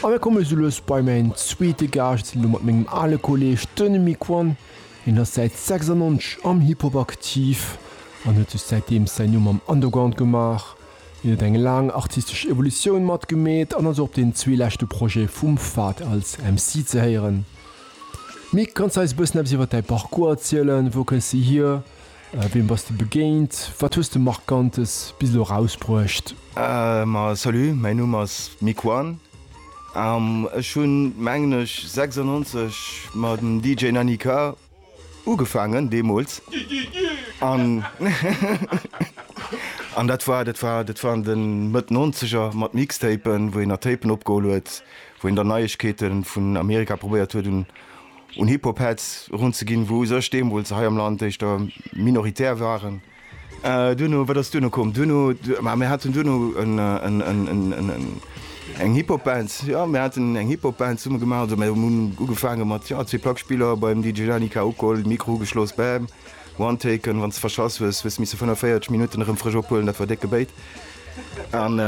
An da komme se lues bei mäin zweete Gaascht, elo mat mengem ale Kolleeg, den Miquon. Hien ass säit 96 am Hip-Hop aktiv an huet sech säitdeems säin Numm am Underground gemaach. Hien huet eng laang artistesch Evolutioun matgemeet an ass och op den zwee leschte Projete vum Fahd als MC ze héieren. Mick, kanns de eis e bëssen eppes iwwer däi Parcours erzielen? Wou kënns de hier? Wiem bass de begéint? Wat hues de Markantes bis elo erausbruecht? Ma salut, mäin Numm ass Miquan an ech hunn mengen ech 96 mam DJ Nanny K ugefaangen deemools an an dat war dat war dat waren den Mëtt Nonzeger mat Mixtapen wou een nach Tapen opgeholl huet wou een dann Neiegkeeten vun Amerika probéiert huet un un Hip-Hop-Heads erunzeginn, wou u sech deemools hei am Land éischter minoritär waren. Duerno, wat ass duerno komm? Duerno, ma mir haten duerno eng Hip-Hop-Band, jo, mir haten eng Hip-Hop-Band zesumme gemaach. Also mir hunn ugefaange mat, jo, zwee Plackspiller beim DJ Lani K. Ukoll, Mikro ugeschloss, bam, one taken, wann s de verschass hues, hues de misse 45 Minutten erëm frësch ophuelen, dat war décke Béit. An,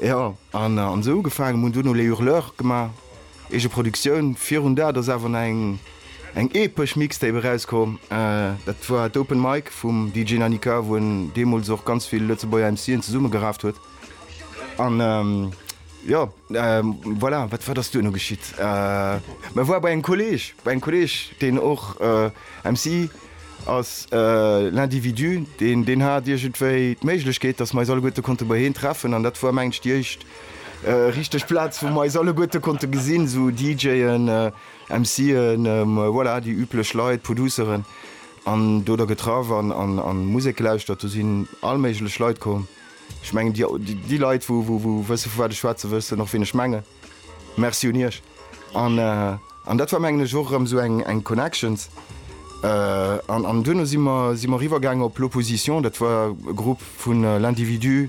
jo, an esou ugefaangen, mir hunn duerno Les Hurleurs gemaach. Eegeproduktioun, virun dat ass awer nach eng epesch Mixtape erauskomm, dat war d'Open Mic vum DJ Nanika, wou en deemools och ganz vill Lëtzebuerger MC'en zesummegeraaft huet an jo voilà. Wat wat ass duerno geschitt? Mä war bei engem Kolleeg, bei engem Kolleeg deen och MC ass, L'Individu, deen deen hat iergendwéi d'Méiglechkeet, datt mer eis alleguerte konnte bei heen treffen an dat war mengen ech déi éischt Richteg Plaz wou mer eis alleguerte konnte gesinn, sou DJen, MCen, voilà déi üblech Leit, Produceren an do der getraff an an Musek gelauschtert. Do sinn all méiglech Leit komm. Ech mengen déi Leit wou wou wësse vu wat ech schwätzen, wëssen och wien ech mengen. Merci un iech an an dat war mengen ech och erëm sou eng eng Connections an an duerno si mer si mer riwwer gaangen op L'Opposition, dat war e Grupp vun L'Individu,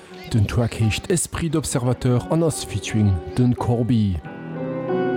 Den Track heescht Esprit d'observateur an ass featuring den Corbi.